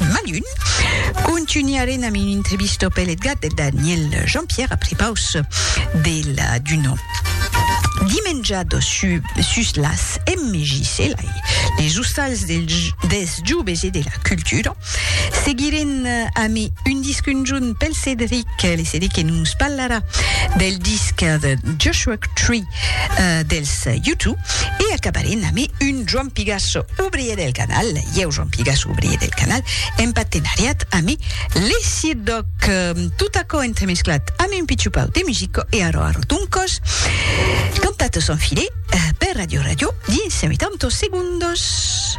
Malun. Contunharem amb un entrevisto pel Edgar de Daniel Jean-Pierre après paus de la Duno. Dimenjado su, sus las MJC, lai, les ostals del, des joves e de la cultura. Seguirem amb un disc conjunt pel Cédric, le Cédric que nos parlarà del disc de Joshua Tree, dels Yutu e acabarem ame un Joan Pigasso obrier del canal, ieu Joan Pigasso obrier del canal en patenariat ame Lesidoc. Tot aquò entremesclat ame un pichupau de musico e arò arò d'un còs cantat son filet per Radio Radio dins cent oitanta segundos.